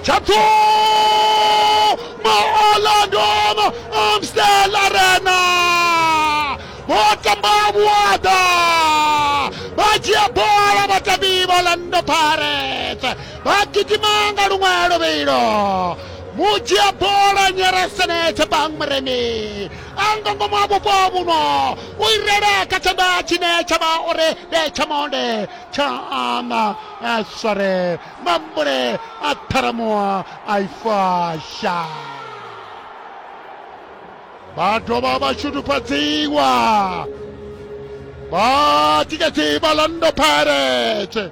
Chatuma Orlando Amstel Arena vho tamba vhuaḓa vha dzhia bola vhatambi vha Orlando Pirates vha gidima nga luṅwe luvhilo mu dzhia bola nyeresenetse bang muremi a nga ngomu ha vhupo vhuno u irele kha tshanḓa tshine tsha vha uri ndi tsha monde tsha ana a sware mambule a ṱharamuwa a ifasha vha dovha vha shudufhadziwa vha tikedzi vha lando pirates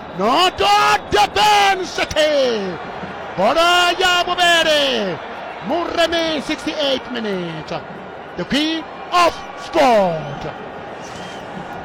notode ben seke bola ya bobele mureme 68 minute the king of sport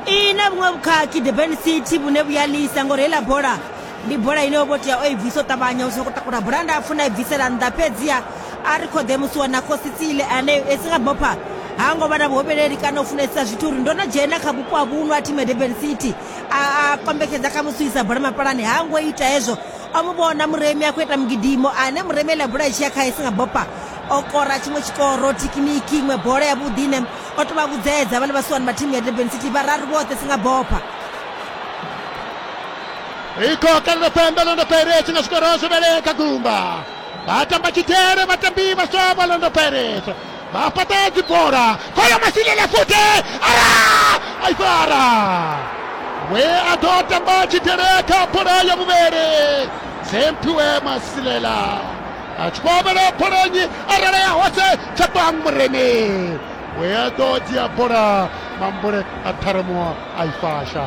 i na vhuṅwe vhukhakhi durban city vhune vhu ya lisa ngori heiḽa bola ndi bola ine yo vhotea o i bvisa o ṱavhanya u soko takula bola nda pfuna i bvisela nnḓa fhedziha a ri khoḓe musi wa na khositsile ane esi nga bopha ha ngo vha na vhuhobeleli kana u funesisa zwithu uri ndo no dzhena kha vhupo ha vhuno ha thimu ya durban city a a kombetshedza kha musi u isa bola mapalani ha ngo ita hezwo o mu vhona muremi a khou ita mugidimo ane muremi ele bola i tshi ya khae singa bopa o kora tshiṅwe tshikoro thekiniki iṅwe bola ya vhuḓi ine o to vha vhudzedza vhale vhasiwani vha thimu ya durban city vhararu vhoṱhe singa bopa ikoka ḽo pembe ḽo ndo pairetsi nga zwikorozwo vhele kha gumba vha tamba tshidele vhatambi vhaswa vha ḽo ndo pairetsi vha fhaṱa dzibola khoyo masilela futhi ara aifara we a ḓo tamba tshidele kha bola ya vhuvhele zemphiwe masilela a tshi khou avhela bola nnyi arala ya hose tsha bang murene we a ḓo dzhia bola mambule a ṱharemuwa aifasha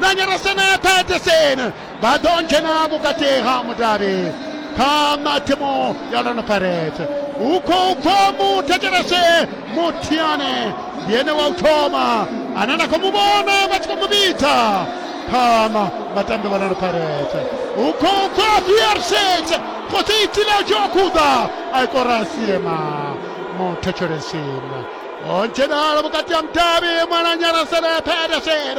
na nyarasa na thate sene vha ḓo dzhena vhukati ha mudavhi kha mathimu ya lona parete hu khou bva muthetshelese muthiane ndi ene wa u thoma ane na khou mu vhona vha tshi khou mu vhidza phama vhatambi vha lona parete hu khou bva fiarset khotsi itile u tshi wa khuḓa a ikora siema muthetshelesini o dzhenala vhukati ha mudavhi mwananyarasele pedersen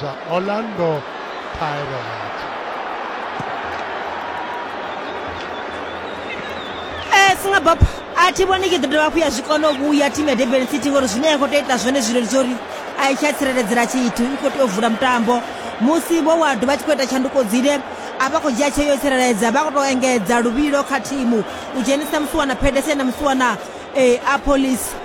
Za Orlando Pirates. Eh, singa bop a thi vhoni tshi ḓo dovha hafhu ya zwi kona u vhuya thimu ya durban city ngori zwine ya khou tea ita zwone zwileli zwa uri a i tsha tsireledzela tshithu i khou tea u vula mutambo musi vho wa dovha tshi khou ita tshanduko dzine a vha khou dzhia tsheo yo tsireledza vha khou tou engedza luvhilo kha thimu u dzhenisa musiwana pedersen na musiwana um eh, a police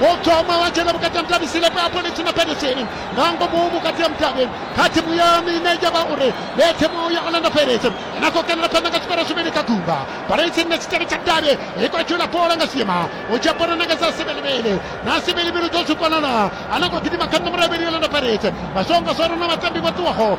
Botoma wachela vhukati ha mudavhisile pa polisi na Pirates nga ngomu vhukati ha mudavhi kha thimu ya mine ya vha uri ndi thimu ya Orlando Pirates ine a khou kenela phanḓa nga zwikoro zwivhili kha gumba. Pirates nga tshitshele tsha davhi i khou tshula bola nga siema u dzhia bola na nga dza sivhelivhili na sivhelivhili dzo zwi kona na a na khou gidima kha nomoro ya vhili ya Orlando Pirates vha songo zwo ri na vhatambi vho ṱuwaho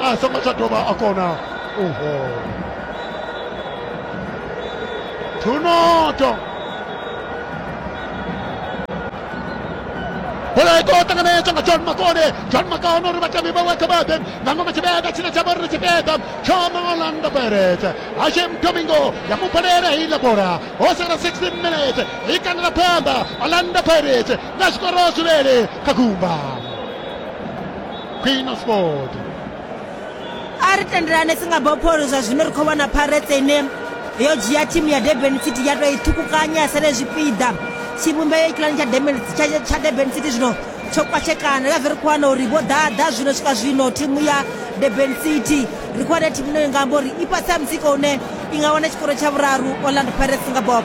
a songo tsha dovha a kona uho thunoto bola i khou ṱanganedzwa nga john makone john makone uri vhatambi vhawe kha vhaḓe nga ngomu tshipiḓa tshine tsha vha uri tshipiḓa tsho orlando pirates hashem domingo ya mu balela heiḽa bola ho sala 16 minutes i kandela phanḓa orlando pirates nga zwikoro zwivhele kha gumba queen of sport a ri tendelane singapore zwa zwino ri khou vhona pirates ine yo dzhia thimu ya durban city ya tou i ṱhukukanya ya sale zwipiḓa tshivhumbeo ikiḽani tsha durban tsha tsha durban city zwino tsho kwatshekana nga zwi ri khou wana uri vho ḓaḓa zwino swika zwino thimu ya durban city ri khou wana thimu ine nga amba uri i fhasi ha mutsiko une i nga wana tshikoro tsha vhuraru orlando pirates singapore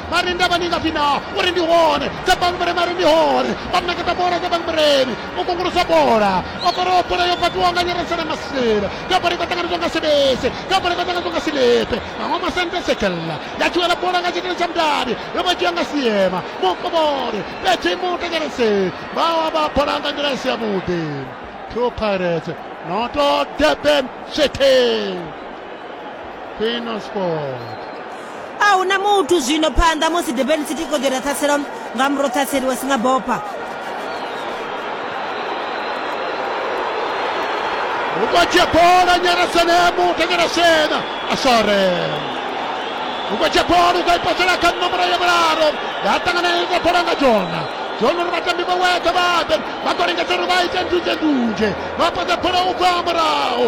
Mari ndavha ni nga pfi na uri ndi hone dza bangbre mari ndi hone vha ṋeketa bola dza bangbreni u kungulusa bola o faraho bola yo fhaṱiwaho nga nyeresela masela ya bola ita ṱanganedzwa nga sebese ya bola ita ṱanganedzwa nga silepe maṅwe masente sekella ya tshiwela bola nga tshitele tsha mudavhi yo vha dzhia nga siema mukovhole fhedzi mutekerese vha wa vha bola nga nḓila i si yavhuḓi two pirates noto durban city a hu na muthu zwino phanḓa musi durban city khou ḓira ṱhaselo nga muro ṱhaseli wa singabopa ukwatshia bola nyarasenemu tanyarasena asore ukwatshia bola ukaipasela kha nomoro ya vhularo ya ṱanganeleza bola nga jona jona uri vhatambi vha weka vhaḓe vha khou lingedza uri vha ite ndunzhendunzhe vha pasa bola ubva murahu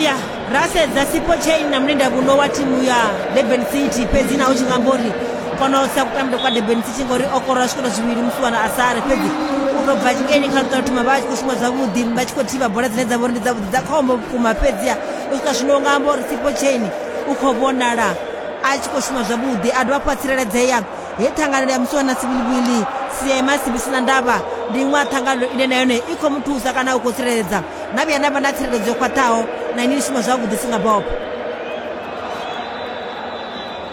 ya rasedza sipo chain na mulinda vuno wa timu ya durban city fhedzi naho tshi nga amba uri kono sa kutambile kwa durban city ngori o kora zwikono zwivhili musi wana a sare fhedzi u tou bva tshikeni kha luṱa thoma vha tshi khou shuma zwavhuḓi vha tshi khou thivha bola dzine dza vha uri ndi dzavhuḓi dza khombo vhukuma fhedziha u swika zwino nga amba uri sipo chain u khou vhonala a tshi khou shuma zwavhuḓi a dovha hafhu a tsireledzea he ṱhanganelo ya musiwa na siviliwili sia ya masibi sina ndavha ndi iṅwe ya ṱhanganelo ine na yone i khou mu thusa kana u khou tsireledza na vhuya na vha na tsireledzo yo khwaṱhaho na ini ni shuma zwavhuḓi singa bobo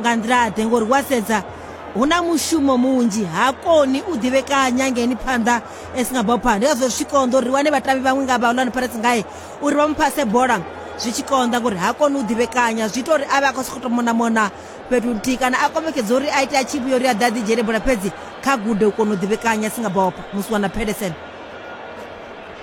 nga nḓila ḓe ngori wa sedza hu na mushumo munzhi ha koni u ḓivhekanya ngeni phanḓa e si nga bopha ndi ngazwo zwi tshi konḓa uri wane vhatambi vhaṅwe nga vhaulani pirates ngae uri vha mu phase bola zwi tshi konḓa ngori ha koni u ḓivhekanya zwi ita uri a vhe a khou sokou to mona mona fhethu nthihi kana a kombetshedza uri a ite a tshi vhuya uri a ḓe a ḓi dzhele bola fhedzi kha gude u kona u ḓivhekanya a si nga bopha musi wana pedersen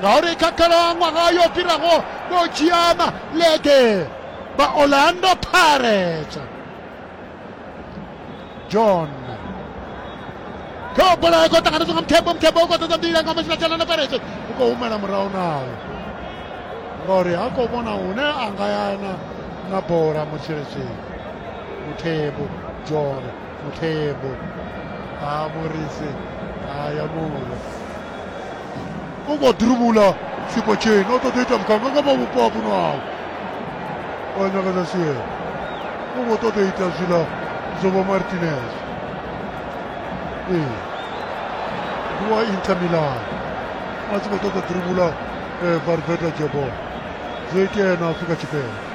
ngauri kha khalaṅwaha yo fhiraho vho dzhia malege vha orlando pirates john kha bola i khou ṱanganedzwa nga mukhebo mukhebo u khou ṱoḓa mbila nga masina tshalana pirates u khou humela murahu nayo ngauri ha khou vhona hune a nga yana na bola mutshiletsheni muthebo john muthebo a murisi a ya mulo u khou ḓiruvhula sipo chain o ṱoḓa ita mukanga nga vha vhupo ha vhuno awu wa nyakaza sie u khou ṱoḓa ita zwiḽa zobo martinez ee ndi wa inter milan a tshi khou ṱoḓa ḓiruvhula eh, varveta jebol zwo itea na afrika tshipembe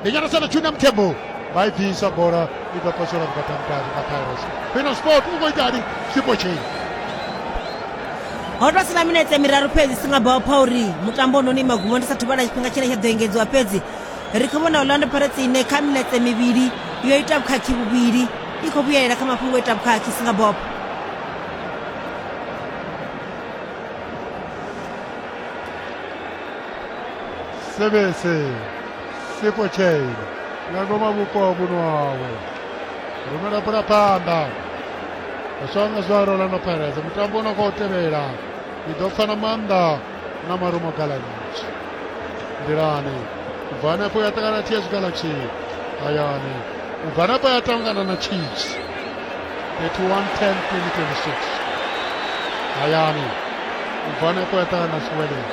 ndi nyana sana junior mthembu vha i bvisa bola i ḓo posola vhukatangutatu kha pyros fino sport u khou itani sipo tshei ho tou sina minetse miraru fhedzi singabao pha uri mutambo ono ni magumo ndi sa thuvhala tshifhinga tshine tsha ḓo engedziwa fhedzi ri khou vhona orlando pirates ine kha minetse mivhili yo ita vhukhakhi vhuvhili i khou vhuyelela kha mafhungo o ita vhukhakhi singabop sebese Sipo Chain nga ngoma vhupo ha vhuno hawe rumela pula phanḓa swanga zwaro ḽa no pfheleza mutambo u no khou tevhela i ḓo pfana maanḓa na marumo galaxy nḓilani u bva hanefho ya ṱangana na ts galaxy hayani u bva hanefho ya tangana na chiefs 31 10 2026 hayani u bva hanefho ya ṱangana na sweleni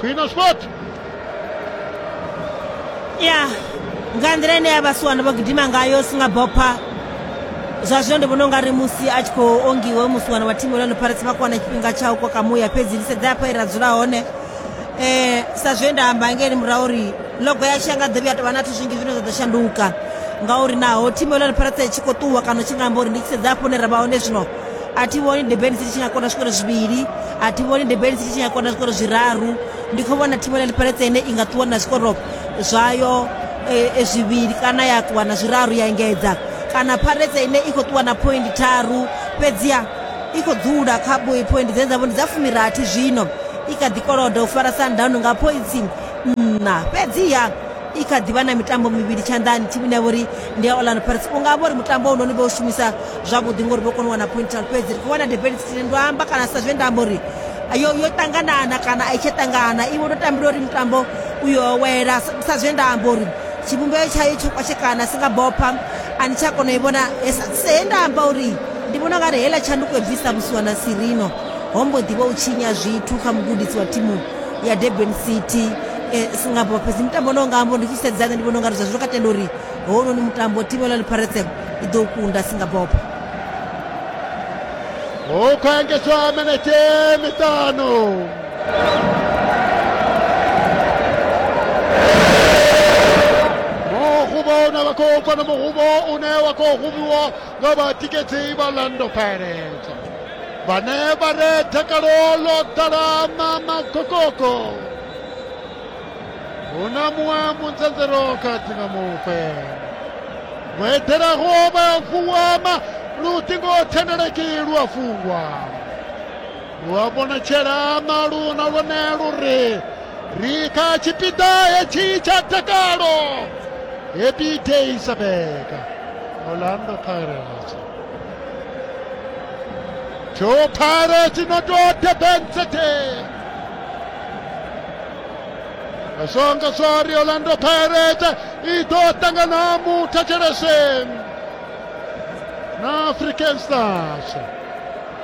khwino sport ya nga nḓila ine ya vhasiwana vho gidima ngayo singabopha zwa zwino ndi vhona u nga ri musi a tshi khou ongiwa musiwana wa thimu yolano pirates vha kwana tshifhinga tsha u koka muya fhedzi ndi sedza hafha ira dzula hone um sa zwe nda amba ngeli murahu uri logo yashu ya nga ḓovhi ya tovha na thu zwinzhi zwine zwa ḓo shanduka ngauri naho thimu yolano pirates tshi khou ṱuwa kana tshi nga amba uri ndi tshi sedza hafho hune ra vha hone zwino a thi vhoni durban city tshi nga kona zwikoro zwivhili a thi vhoni durban city tshi nga kona zwikoro zwiraru ndi khou vhona thivhela ḽiperetse ine i nga ṱuwa na zwikoro zwayo eh, zwivhili kana ya ṱuwa na zwiraru ya engedza kana pharetse ine i khou ṱuwa na point tharu fhedziha i khou dzula kha boi point dzine dzavho ndi dza fumirathi zwino i kha ḓi koloda u fara sundownu nga pointsi nṋa fhedziha i kha ḓivha na mitambo mivhili tshanḓani thimu ine ya vha uri ndi ya orlando pirates u nga vho ri mutambo unoni vho u shumisa zwavhuḓi ngori vho kona u wana pointal fhedzi ri khou wana debeli sitini ndo amba kana sa zwe nda amba uri yo yo ṱanganana kana a i tsha ṱangana iwe ndo tambila uri mutambo u yo wela sa zwe nda amba uri tshivhumbeo tshayo tsho kwashekana si nga bopha a ni tsha kona u i vhona he nda amba uri ndi vhona u nga ri heiḽa tshanduko i bvisa vhusiwana sirino ho mbo ḓi vha u tshinya zwithu kha mugudisi wa thimu ya durban city eh, singapore fhedzi mutambo une wanga ambo ndi tshi sedzana ndi vhona ungari zwa zwino ka tenda uri hounoni mutambo timu la liparetsem i ḓo kunda singapore hu khou engedzwa minete miṱanu muhuvho une wa khou bva na muhuvho une wa khou huvhiwa nga vhatikedzi vha lando pirates vhane vha re dakalo ḽo ḓala mama kokoko hu na muṅwe munzanzero kati nga mufe vho eḓelaho vha vuwama luṱingo thendeleki lu a fungwa lu a vhonatshela malu na lwone lu ri ri kha tshipiḓa hetshi tsha dakalo happy day sabeka orlando pirates Joe Pirates no tou debenzete songa sori Orlando Pirates i ḓo ṱangana muthetshelese na African Stars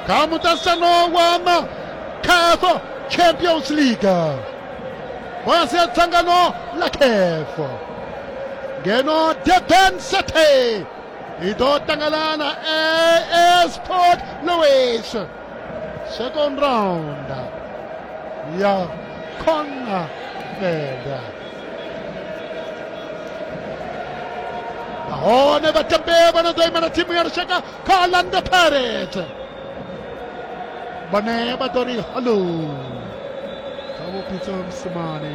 kha muṱasano wa ma CAF Champions League fhasi ya dzangano la CAF ngeno Durban City i ḓo ṱangalana as port louis second round ya khona feda nahone vhatambi vha no ḓo imela thimu ya lushaka kha orlando pirates vhane vha ḓo ri hallo kha vhupitso msimane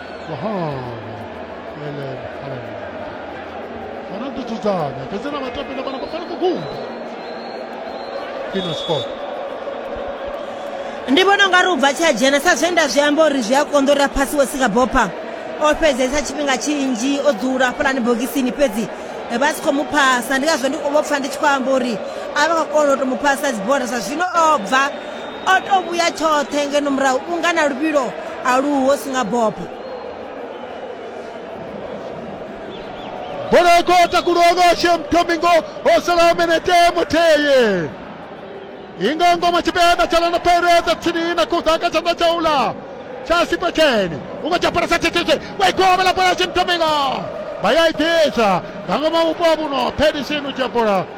Fernando Suzana, terceira batida, pegou a bola para o Gumba. Pino Sport. ndi vhona unga ri u bva tsha dzhena sa zwe nda zwi amba uri zwi a konḓa uri a phasi wo sika bopa o fhedzesa tshifhinga tshinzhi o dzula hafhalani bogisini fhedzi eh, vha si khou mu phasa ndi ngazwo ndi vho pfa ndi tshi khou amba uri a vha khou kona u tou mu phasa dzibola zwa zwino o bva O tou vhuya tshoṱhe ngeno murahu unga na luvhilo a lu ho si nga bopo. Bola khou takulwa nga Shem Domingo ho salaho minete muthihi. I nga ngoma tshipiḓa tsha Lana Pirates dza tsini na kuḓa kha tshanḓa tsha ula tsha sipa tshene. U nga tsha parasa thethete wa ikovhela bola Shem Domingo. Vha ya i ḓisa nga ngoma vhupo vhuno phedisini u dzhia bola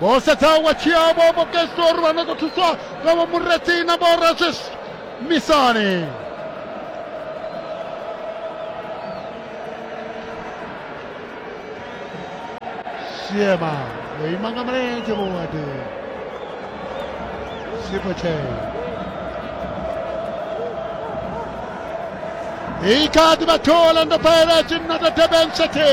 vho sedza wa tshiavho vho kestor vha nyago thuswa nga vho mureti na vho rajesh misani siema yo ima nga mulenzhe vhuwadi sipo tshee i kha ḓi vha thola ndo fhaela tshinnada durban city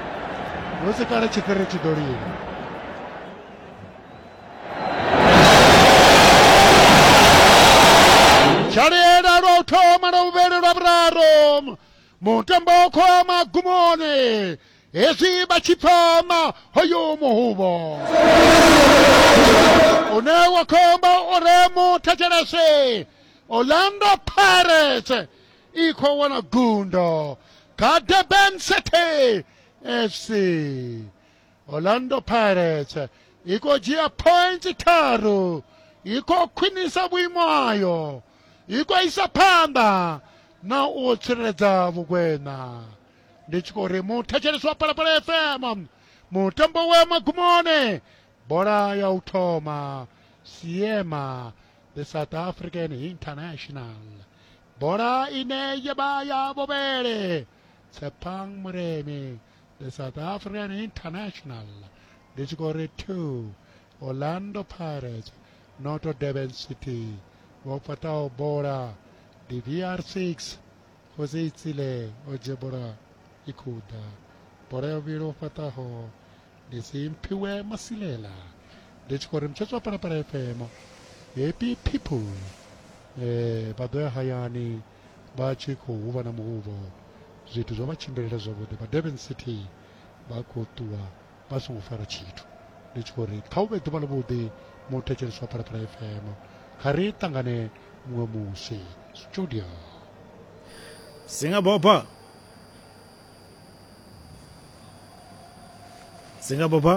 dzhalela lwa u thoma lwa vhuvhele lwa vhuraru mutambo wo khou ya magumoni hezwi vha tshi pfama hoyu muhuvho une wa khomba uri muthetshelese orlando pirates i khou wana gundo kha durban city fc orlando pirates i khou dzhia points tharu i khou khwinisa vhuimo hayo i khou isa phanḓa na u tsireledza vhukwena ndi tshi khou ri muthetshelesi wa palapala fm mutambo wa magumoni bola ya u thoma siema the south african international bola ine ya vha ya vhuvhele tshepang muremi the south african international ndi tshi khou ri two orlando pirates noto durban city vho fhataho bola ndi vr six khosi itsile o dzhia bola i khou ḓa bola ya vhuvhili o fhataho ndi si mphiwe masilela ndi tshi khou ri mutshetswa palapala fm happy people eh vha ḓo ya hayani vha tshi khou huvha na muhuvho zwithu zwo vha tshimbilela zwavhuḓi vha durban city vha khou ṱuwa vha songo fara tshithu ndi tshi khou ri kha u vhe ḓuvha ḽavhuḓi muthetshelesi wa phalaphala fm kha ri ṱangane muṅwe musi studio singabhobha Sëñ Abo Ba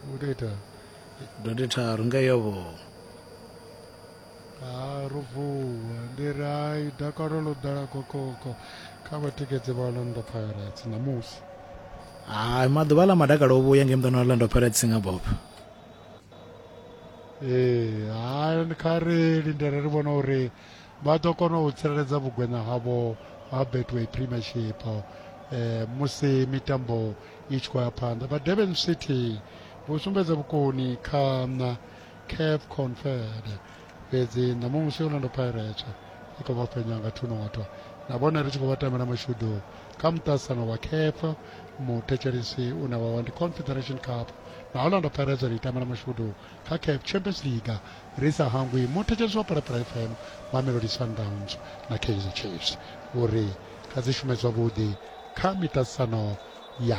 mu day taal dodi taaru nga yoboo arufu ndirai dakarolo dara kokoko kava tikedze va orlando pirates namusi hayi maḓuvha ḽa madakalo o vhuya ngei muḓana wa orlando pirates nga bob ee hayi kha ri lindele ri vhona uri vha ḓo kona u tsireledza vhugweṋa havho ha betway premiership eh, musi mitambo i tshi khou ya phanḓa vha durban city vho sumbedza vhukoni kha na caf confed fhedzi ṋamusi orlando pirates i khou vha fhenya nga thunotwa na vhone ri tshi khou vha tamela mashudu kha muṱasano wa caf muthetshelisi une wa wa ndi confederation cup na orlando pirates ri itamela mashudu kha Caf Champions League ri sa hangwi muṋetshedzi wa Phalaphala FM, Mamelodi Sundowns na Kaizer Chiefs u ri kha dzi shume zwavhuḓi kha miṱaṱisano ya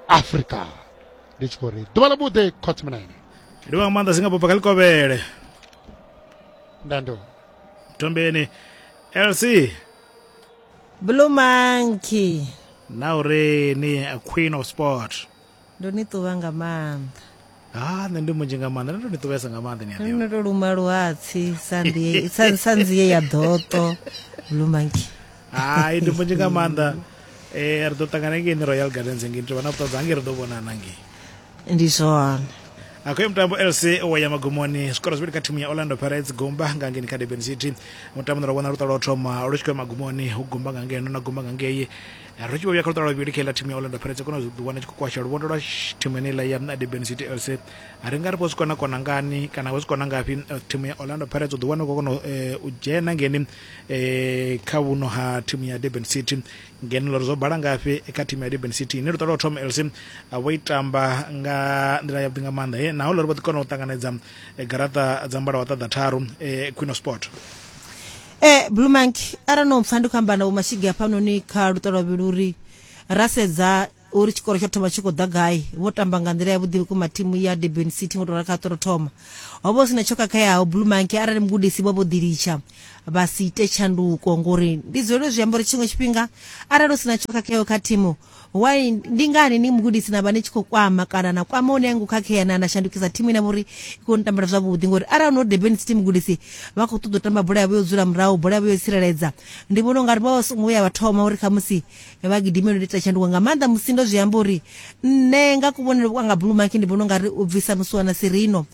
Afrika. Ndi tshi khou ri ḓuvha ḽa vhuḓi Khotsi Munene. Ndi wa nga maanḓa singa bva kha ḽikovhele. Ndando. Mthombeni. LC. Blue Monkey. Na uri ni a Queen of Sport. Ndo ni ṱuvha nga maanḓa. Ha nṋe ndi munzhi nga maanḓa ndo tou ni ṱuvhesa nga maanḓa ni a ḓivha. Ndo tou luma luhatsi sa ndiye sa sa nzie ya ḓoṱo blue monkey. Hai ndi munzhi nga maanḓa. Eh ri ḓo ṱangana ngei ni Royal Gardens ngei tovha na vhuṱanzi hangei ri ḓo vhonana ngei. Ndi zwone. Akhoyo mutambo LC wa ya magumoni zwikoro zwivhili kha thimu ya Orlando Pirates Gumba nga ngeni kha Durban City mutambo na ro vhona luṱa lwa u thoma lu tshi khou ya magumoni hu Gumba nga ngeno na Gumba nga ngei ri tshi vho vhuya kha luṱa lwa vhuvhili kha iḽa thimu ya orlando pirates kona zwi ḓiwana tshi khou kwasha luvhondo lwa thimu yeneiḽa ya durban city lc ri nga ri vho zwi kona kona ngani kana vho zwi kona ngafhi thimu ya orlando pirates u ḓiwana u khou kona u dzhena ngeni kha vhuno ha thimu ya durban city ngeno lori zwo bala ngafhi kha thimu ya durban city ine luṱa lwa thoma lc vho i tamba nga nḓila yavhuḓi nga maanḓa he naho lori vho ḓi kona u ṱanganedza garaṱa dza mbala wa ṱaḓa tharu khwino sport eh blue monkey arali no mpfa ndi khou amba na vho mashigi hafhanoni kha luṱa lwa vhili uri ra sedza uri tshikoro tsho thoma tshi khou ḓa gai vho tamba nga nḓila ya vhuḓi vhukuma thimu ya durban city ngo tou rali kha ṱoro thoma ho vha hu si na tsho khakheaho blue monkey arali mugudisi vho vho ḓilitsha vha si ite tshanduko ngori ndi dzulele zwi amba uri tshiṅwe tshifhinga arali hu si na tsho khakheaho kha thimu why ndi ngani ni mugudisi na vha ni tshi khou kwama kana na kwama hune ngo khakhea na na shandukisa thimu ine vhori i khou ni tambela zwavhuḓi ngori arali no debeni city mugudisi vha khou ṱoḓa u tamba bola yavho yo dzula murahu bola yavho yo tsireledza ndi vhona ungari vha vha songo vhuya vha thoma uri khamusi vha gidimelo ndi ita tshanduko nga maanḓa musi ndo zwi amba uri nṋe nga kuvhonele kwanga blue monkey ndi vhona ungari u bvisa musiwana sirino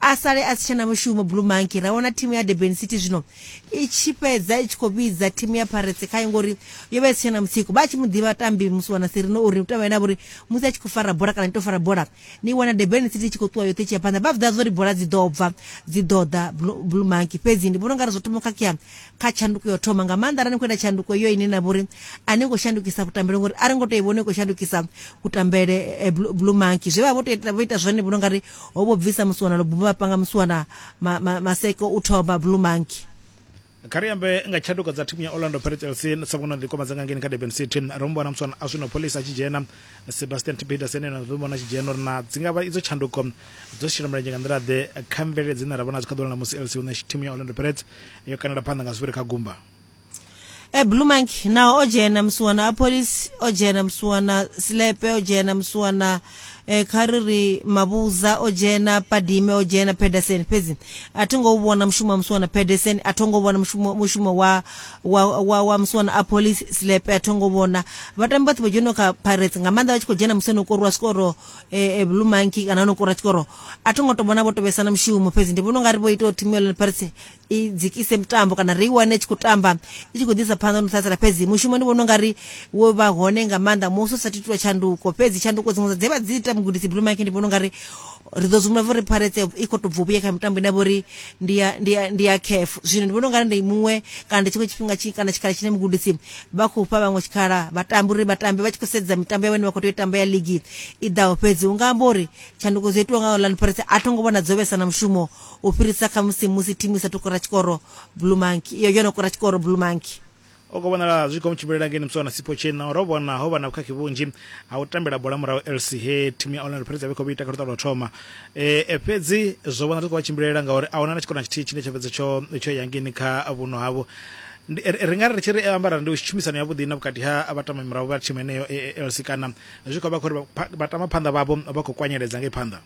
a sale a si tshena mushumo blue monkey ra vhona thimu ya durban city zwino i tshi fhedza i tshi khou vhidza thimu ya paretse khayo ngori yo vha i si tshena mutsiko vha tshi mu ḓivha tambi musi wana sirino uri u tamba ene avha uri musi a tshi khou fara bola kana i to fara bola ni wana durban city i tshi khou ṱuwa yoṱhe tshia phanḓa vha vhidza zwa uri bola dzi ḓo bva dzi ḓo ḓa blue monkey fhedzi ndi vhona ungari zwo thoma khakhea kha tshanduko yo thoma nga maanḓa arali ni khou ita tshanduko yo ine na vhori a ni khou shandukisa kutambele ngori a ri ngo to i vhona i khou shandukisa kutambele eh, blue monkey zwe vha vho ita zwone vhona ungari ho vho bvisa musiwana lo buma panga musiwana ma, ma, maseko u thoma blue monkey kha ri ambe nga tshanduko dza thimu ya orlando pirates lc sa vhona ḓikoma dza nga ngeni kha durban city ro mu vhona muswana a zwino pholisa a tshi dzhena sebastian tipetersen ene ro vhona a tshi dzhena uri na dzi nga vha idzo tshanduko dzo shela mulenzhe nga nḓila ḓe kha mvelele dzine ra vhona dzi kha ḓola na musi lc hu na thimu ya orlando pirates yo kanela phanḓa nga zwivhiri kha gumba e blue monkey naho o dzhena musuwana a police o dzhena musuwana silepe o dzhena musuwana eh, kha ri ri mavhuza o dzhena padime o dzhena pedersen fhedzi a thi ngo u vhona mushumo wa musuwana pedersen a tho ngo vhona mushumo, mushumo wa, wa, wa, wa musuwana a police silepe a tho ngo vhona vhatambi vhoṱhe vho dzheno kha pirates nga maanḓa vha tshi khou dzhena musi no korwa sikoro eh, eh, blue monkey kana no korwa sikoro a tho ngo to vhona vho tovhesana mushumo fhedzi ndi vhona u nga ri vho ita uri thimu ya lone pirates i dzikise mutambo kana ri i wane tshi khou tamba i tshi khou ḓisa phanḓa no ṱhatsela fhedzi mushumo ndi vhona ungari wo vha hone nga maanḓa musi u sa titula tshanduko fhedzi tshanduko dziṅwe dza dze vha dzi ita mugudisi blue mike ndi vhona ungari ri ḓo zwivhona vho ri pharetse i khou tobva vhuya kha mitambo ine vhori ndi ya ndi ya ndi ya caf zwino ndi vhona ungari ndi muṅwe kana ndi tshiṅwe tshifhinga tshi kana tshikhala tshine mugudisi vha khou fha vhaṅwe tshikhala vhatambi uri vhatambi vha tshi khou sedza mitambo ya vhone vha khou tea u tamba ya ligi i ḓaho fhedzi unga amba uri tshanduko dzo itiwa nga orlando pharetse a tho ngo vhona dzo vhesa na mushumo u fhirisa kha musi musi thimu i sa tou kora tshikoro Blue Monkey iyo yo no kora tshikoro Blue Monkey. O khou vhonala zwi khou mu tshimbilela ngeni Muswana Sipho Tshena ro vhona ho vha na vhukhakhi vhunzhi ha u tambela bola murahu LC he thimu ya Orlando Pirates ya vha khou ita kha luṱa lwa thoma e, e fhedzi zwo vhona zwi khou vha tshimbilela ngauri a huna na tshikona tshithihi tshine tsho fhedza tsho tsho ya ngeni kha vhuno havho ri nga ri tshi ri ambara ndi tshumisano ya vhuḓi na vhukati ha vhatama murahu vha thimu heneyo e, e, LC kana zwi khou vha khou ri vhatama phanḓa vhavho vha khou kwanyeledza ngei phanḓa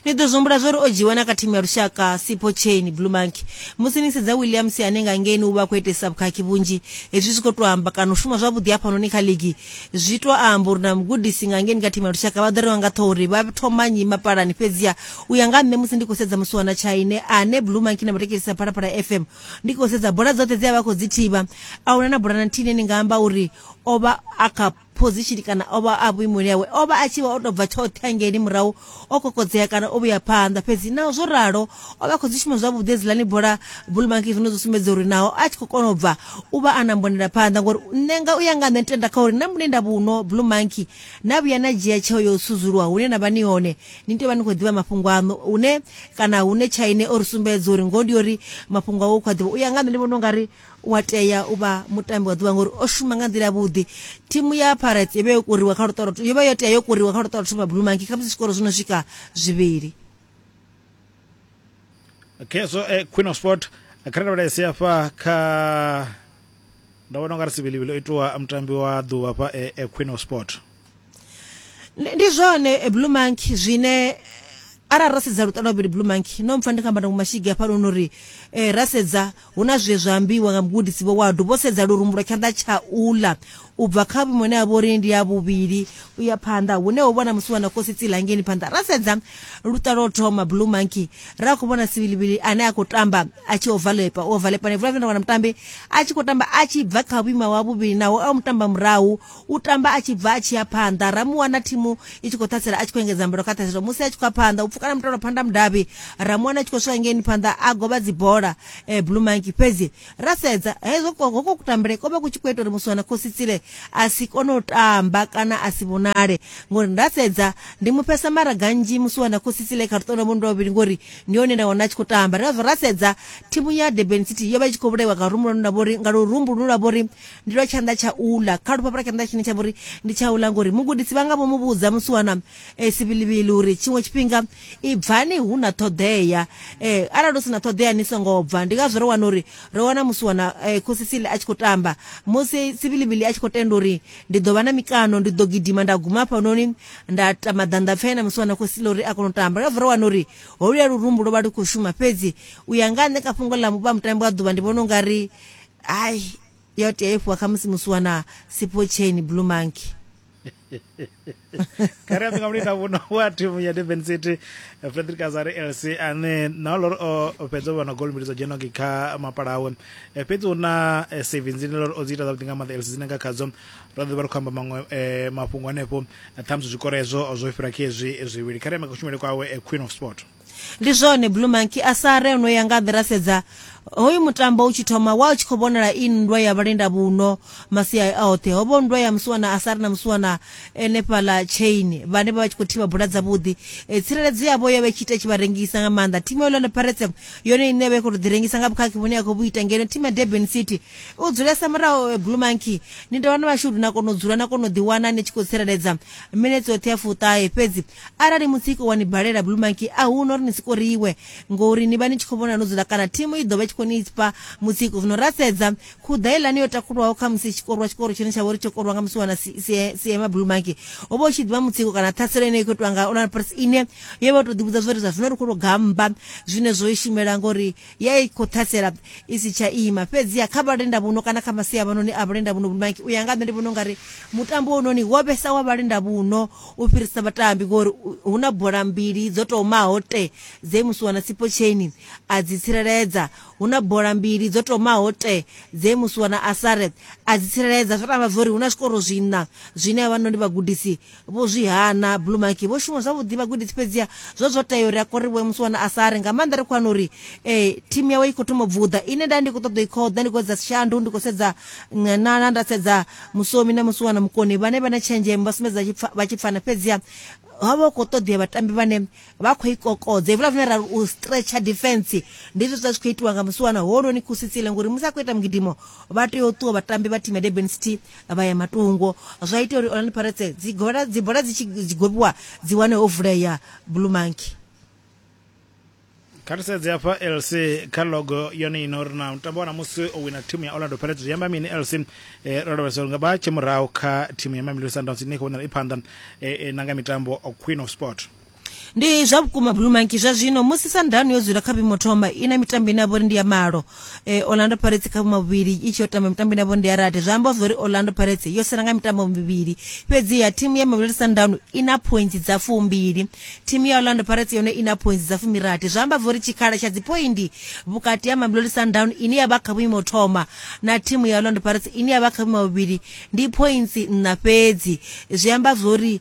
ni ḓo zwi humbula zwa uri o dzhiiwa na kha thimu ya lushaka sipo chain blue monkey musi ni sedza williams ane nga ngeni u vha a khou itesa vhukhakhi vhunzhi hezwi zwi khou tou amba kana u shuma zwavhuḓi hafhanoni kha ligi zwi tou amba uri na mugudisi nga ngeni kha thimu ya lushaka vha ḓo rengwa nga ṱhoho uri vha thoma nyi mapalani fhedziha u ya nga nṋe musi ndi khou sedza musiwana tshaine ane blue monkey na vhatekelisa phalaphala fm ndi khou sedza bola dzoṱhe dzi a vha khou dzi thivha a huna na bola na nthihi ine ni nga amba uri o vha a kha phozishini kana o vha a vhuimoni hawe o vha a tshi vha o tou bva tshoṱhe hangeini murahu o kokodzea kana o vhuya phanḓa fhedzi naho zwo ralo o vha khou dzi shuma zwavhuḓi edziḽani bola bulumaki zwine zwo sumbedza uri naho a tshi khou kona u bva u vha a na mbonela phanḓa ngori nṋe nga u ya nga nṋe ndi tenda kha uri na vhune nda vhuno bulumaki na vhuya na dzhia tsheo yo sudzuluwa hune na vha ni hone ni tea vha ni khou ḓivha mafhungo aṋu hune kana hune tshaine o ri sumbedza uri ngoho ndi uri mafhungo awe u khou a ḓivha u ya nga nṋe ndi vhona u nga ri U a tea u vha mutambi wa ḓuvha ngori o shuma nga nḓila ya vhuḓi thimu ya pirates yo vha yo kuriwa kha luṱolo yo vha yo tea yo kuriwa kha luṱolo thoma blue monkey kha musi zwikoro zwi no swika zwivhili okay so eh, queen of sport eh, kha ri lavhelese hafha kha nda vhona u nga ri sivhilivhili o itiwa mutambi wa ḓuvha hafha eh, eh, queen of sport ndi zwone eh, blue monkey zwine arali ra sedza luṱa lwavhili blue monkey no mpfa ndi kha mbandango mashigi hafha luno uri eh, ra sedza hu na zwe zwa ambiwa nga mugudisi vho wadu vho sedza lurumbu lwa tshanḓa tsha ula u bva kha vhuimo ne a vho ri ndi ya vhuvhili u ya phanḓa hune ho vhona musi wana kosi tsilangeni phanḓa ra sedza luṱa lwo thoma blue monkey ra khou vhona sivilivili ane a khou tamba a tshi ovalepa u ovalepa ne vula vula wana mutambi a tshi khou tamba a tshi bva kha vhuima wa vhuvhili naho a mutamba murahu U tamba a tshi bva a tshi ya phanḓa. Ra mu wana thimu i tshi khou ṱhasela a tshi khou engedza mbilo kha ṱhaselo. Musi a tshi khou ya phanḓa, u pfukana mutalo phanḓa mudavhi. Ra mu wana a tshi khou swika ngeini phanḓa a govha dzibola eh, Blue Monkey. Fhedzi ra sedza hezwo ko- hoko kutambele ko vha ku tshi khou ita uri Muswana Khositsile a si kone u tamba kana a si vhonale ngori nda sedza ndi mu fhesa mara ganzhi Muswana Khositsile kha luṱondo mundo vhavhili ngori ndi hone nda wana a tshi khou tamba. Ri ngazwo ra sedza thimu ya Durban City yo vha i tshi khou vhulaiwa nga rumbu lune lwa vhori nga lurumbu lune lwa vhori ndi lwa tshanḓa tsha ula kha lufhafho lwa tshanḓa tshine tsha vhori ndi tsha ula ngori mugudisi vha nga vho mu vhudza musi wana um eh, sivilivili uri tshiṅwe tshifhinga i bvani hu na ṱhoḓea um arali hu si na ṱhoḓea ni songo bva ndi ngazwo ro wana uri ro wana musi wana um khosisili a tshi khou tamba musi sivilivili a tshi khou tenda uri ndi ḓo vha na mikano ndi ḓo gidima nda guma hafhanoni nda ta maḓanḓa pfena musi wana khosisili uri a kone u tamba ngazwo ro wana uri holuya lurumbu lwo vha lu khou shuma fhedzi u ya nga nṋe kha fhungo ḽa vha mutambi wa ḓuvha ndi vhona u nga ri ai yo tea i fhiwa khamusi musi wana sipo chain blue monkey kare apinga mulita vuno wa thimu ya durban city frederick azari lc ane na lori o fhedza u vhona gol mbili dzo dzhenoki kha mapala awe Eh, fhedzi hu na eh, savings ine lori o dzi ita zwavhuḓi nga maanḓa lc dzine nga khadzo ra ḓo vha ri khou amba maṅwe eh, mafhungo hanefho eh, ṱhamusi zwikoro hezwo zwo fhira khezwi zwivhili kharema kushumele kwawe eh, queen of sport ndi zwone blue monkey a sa re ono ya nga ḓi ra sedza hoyu mutambo u tshi thoma wa u tshi khou vhonala i nndwa ya vhalenda vhuno masia a oṱhe ho vho nndwa ya musiwana a sa ri na musiwana ene fhala chain vhane vha vha tshi khou thivha bula dzavhuḓi e, tsireledzo yavho yo vha i tshi ita tshi vha rengisa nga maanḓa thimu ya orlando pirates yone ine ya vha i khou tou ḓi rengisa nga vhukhakhi vhune ya khou vhu ita ngeno thimu ya durban city u dzulesa muraho e, blue monkey ni dovha na mashudu na kona u dzula na kona u ḓiwana ni tshi khou tsireledza minetse yoṱhe ya fuṱahe fhedzi arali mutsiko wa ni balela blue monkey a hu no ri ni sikoriwe ngori ni vha ni tshi khou vhona no dzula kana thimu i ḓo vha tshi khou ni fha mutsiko zwino ra sedza khuḓa ilani yo takulwaho kha musi tshikorwa tshikoro tshine tsha vha uri tsho korwa nga musi wana siema blue monkey ho vha u tshi ḓivha mutsiko kana ṱhaselo ine i khou itiwa nga orlando pirates ine yo vha tou ḓivhudza zwo ri zwa zwino ri khou tou gamba zwine zwo i shumela ngori ya i khou ṱhasela i si tsha ima fhedziha kha vhalenda vhuno kana kha masia vhanoni a vhalenda vhuno mike u ya nga nṋe ndi vhona u nga ri mutambo wononi wo vhesa wa vhalenda vhuno u fhirisa vhatambi ngori hu na bola mbili dzo tomaho te dze musuwana sipo chaini a dzi tsireledza hu na bola mbili dzo tomaho te dze musuwana asare a dzi tsireledza zwo tamba zwo ri hu na zwikoro zwiṋa zwine havhanoni vhagudisi Vho zwi hana. Blue Monkey vho shuma zwavhuḓi vhagudisi fhedziha zwo zwo tea uri a korivhuwe musi wana a sa ri nga maanḓa ri khou wana uri um thimu yawe i khou thoma bvuḓa ine nda ndi khou ṱoḓa i khoḓa ndi khou edza shandu ndi khou sedza nganana nda sedza musomi na musi wana mukoni vhane vha na tshenzhemo vha sumbedza vha tshi pfana fhedziha ha vha khou ṱoḓea vhatambi vhane vha khou i kokodza hevula zwine ra ri u stretcher defense ndi zwe zwa zwi khou itiwa nga musiwana hononi kusitsile ngori musi a khou ita mugidimo vha tea u ṱuwa vhatambi vha thimu ya durban city vha ya matungo zwa ita uri orlando pirates dzibola dzi tshi gobiwa dzi wane ho vulea blue monkey kha ri sedze hafha lc kha logo yone ino ri na mutambo wa namusi o wina thimu ya orlando pirates zwi amba mini lc um eh, ro lavhelesa uri nga vha tshe murahu kha thimu ya mamelodi sundowns ine i khou vhonala i phanḓa um eh, eh, na nga mitambo queen of sport ndi zwa vhukuma blue monkey zwa zwino musi sandano yo dzula kha vhuimo thoma i na mitambo ine ya vhori ndi ya malo eh, orlando pirates kha vhuma vhuvhili i tshi yo tamba mitambo ine ya vhori ndi ya rathi zwa amba zwa uri orlando pirates yo sala nga mitambo mivhili fhedziha thimu ya mamelodi sandano i na points dza fumbili thimu ya orlando pirates yone i na points dza fumirathi zwa amba zwa uri tshikhala tsha dzipoindi vhukati ha mamelodi sandano ine ya vha kha vhuimo thoma na thimu ya orlando pirates ine ya vha kha vhuima vhuvhili ndi points nṋa fhedzi zwi amba zwa uri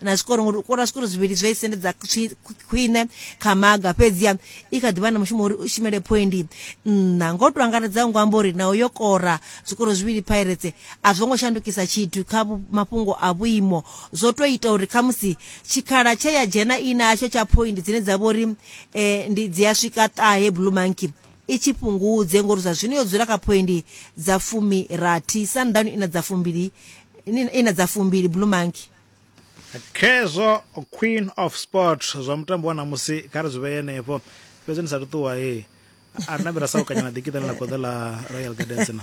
na zwikoro ngori u kora zwikoro zwivhili zwi a i sendedza khwi- khwi- khwine kha maga fhedziha i kha ḓivha na mushumo uri u shumele phoindi nṋa ngo to angaredzaho ngo amba uri naho yo kora zwikoro zwivhili pirates a zwo ngo shandukisa tshithu kha vhu- mafhungo a vhuimo zwo to ita uri khamusi tshikhala tshe ya dzhena i natsho tsha phoindi dzine dza vha uri um ndi dzi a swika ṱahe blue monkey i tshi fhungudze ngori zwa zwino yo dzula kha phoindi dza fumi rathi sundowns i na dza fumbili i na dza fumbili blue monkey khezwo queen of sport zwa mutambo wa ṋamusi kha ri zwi vhee henefho fhedzi ni sa ṱuṱuwa he a ri nambira sa u kanyana ḓikiṱa ni ḽa goḓo ḽa royal gardens na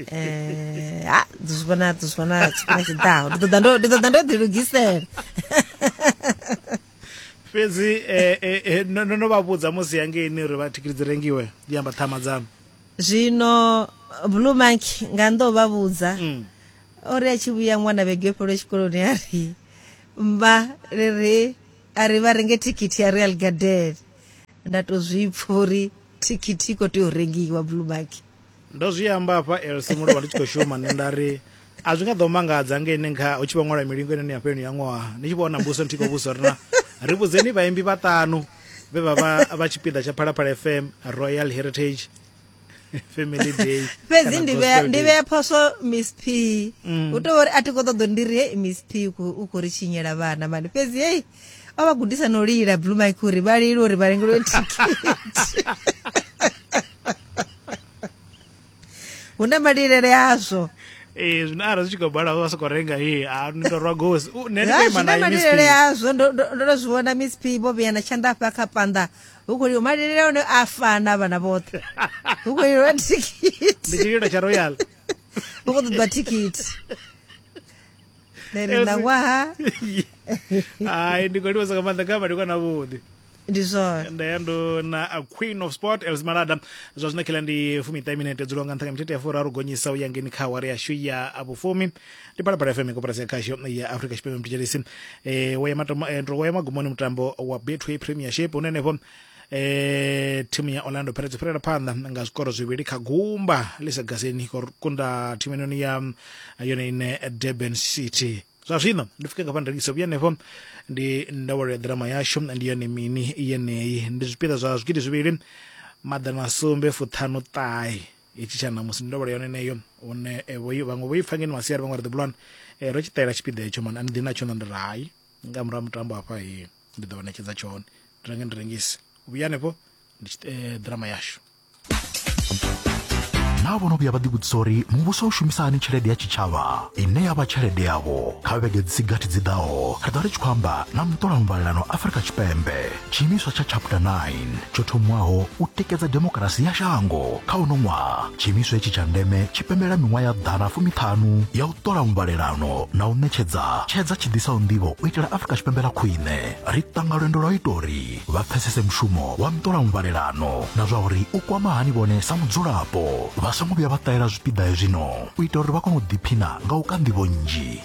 eh ha zwi vhona zwi vhona tshifhinga tshiḓaho ndi ṱoḓa ndo ndi ṱoḓa ndo ḓi lugisela fhedzi eh, eh, eh, no no- no vha vhudza musi yangeini uri vha thikhithi dzi rengiwe ndi amba ṱhama dzanu zwino blue monkey nga ndo vha vhudza Mm. o ri a tshi vhuya ṅwana vhege yo fhelwa tshikoloni a ri mma ri ri a ri vha renge thikhithi ya real garden nda tou zwi pfha uri thikhithi i khou tea u rengiwa blue mark ndo zwi amba hafha elsi mulovha ndi tshi khou shuma nṋe nda ri a zwi nga ḓo mangadza nga ine nkha hu tshi vha ṅwala milingo ine ni ya fheloni ya ṅwaha ni tshi vhona mbuso nthi khou vhusa uri na ri vhudzeni vhaimbi vhaṱanu vhe vha vha vha tshipiḓa tsha phalaphala fm royal heritage family day fhedzi ndi vhea ndi vhea phoso miss p mm. u tou uri a thi khou ṱoḓo ndi ri hei miss p u khou ri tshinyela vhana mani fhedzi hei o vha gudisa no lila blue mike uri vha lile uri vha lengelwe thikhithi hu na malilele azwo ee zwino arali zwi tshi khou bala vha sokou renga ee a ni tou rwa gosi nṋe ndi khou ima naye miss p azwo ndo ndo zwi vhona miss p vho vhuyana tshanḓa afha kha panda hu khou lilo malilele one a fana vhana vhoṱhe hu khou lilwa thikhithi ndi tshililo tsha royal hu khou ṱoḓiwa thikhithi then ṋawaha hai ndi khou livhasa nga maanḓa nga vha ndi kwana vhuḓi ndi zwone nda ya ndo na a queen of sport els malada zwa zwino khela ndi fumiṱahe minete dzulo nga nṱha nga mithethe ya furaru gonyisa u ya ngeni kha awara yashu ya vhufumi ndi phalaphala fm koporasi ya khasho ya africa tshipembe mthetshelesi e, wo ya matomo e, ndo wo ya magumoni mutambo wa betway premiership une henefho e, thimu ya orlando pirates yo fhirela phanḓa nga zwikoro zwivhili kha gumba ḽi sa gaseni khou kunda thimu inoni ya yone ine durban city zwa zwino ndi fike ngafha ndilingise vhuya henefho ndi ndawelo ya ḓirama yashu ndi yone mini yeneyi ndi zwipiḓa zwa zwigidi zwivhili maḓana sumbe fuṱhanu ṱahe hetshi tsha ṋamusi ndi ndovholo yone neyo one vhaṅwe vho i pfa ngeno masiari vhaṅwe ri ḓi bulwani um ro tshi ṱalela tshipiḓa hetsho mani a ni ḓi natsho na ndi ri hai nga murahu mutambo hafha he ndi ḓo vha ṋetshedza tshone ndi renge ndi rengise u vhuya hanefho ndi ḓirama yashu naa vho no vhuya vha ḓivhudzisa uri muvhuso u shumisa hani tshelede ya tshitshavha ine ya vha tshelede yavho kha vhege dzi si gathi dzi ḓaho ri ḓo ri tshi khou amba na muṱola muvhalelano afrika tshipembe Tshiimiswa tsha Chapter 9 tsho thomiwaho u tikedza demokirasi ya shango kha uno ṅwaha. Tshiimiswa hetshi tsha ndeme tshi pembelela miṅwaha ya ḓana fumiṱhanu ya u ṱola muvhalelano na u ṋetshedza tshedza tshi ḓisaho nḓivho u itela Afrika Tshipembe ḽa khwine. Ri ṱanga lwendo lwa u ita uri vha pfesese mushumo wa muṱola muvhalelano na zwa uri u kwama hani vhone sa mudzulapo vha songo vhuya vha ṱahela zwipiḓa hezwino u itela uri vha kone u ḓiphina nga u ka nḓivho nnzhi.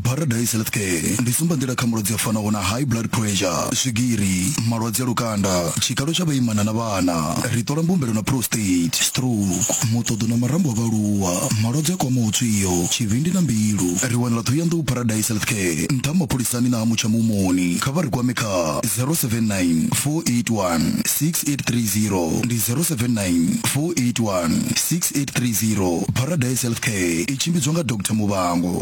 Paradise Healthcare ndi tsumbanḓila kha malwadze a fanaho na high blood pressure, swigiri, malwadze a lukanda, tshikalo tsha vhaimana na vhana. Ri ṱola mbumbelo na prostate, stroke, muṱoḓo na marambo a vhaaluwa, malwadze a kwamaho tswio, tshivhindi na mbilu. Ri wanala Ṱhohoyanḓou Paradise Healthcare, nṱha ha mapholisani na ha Mutsha Muhumoni. Kha vha ri kwame kha 079 481 6830 ndi 079 481 6830. Paradise Healthcare i tshimbidzwa nga Doctor Muvhango.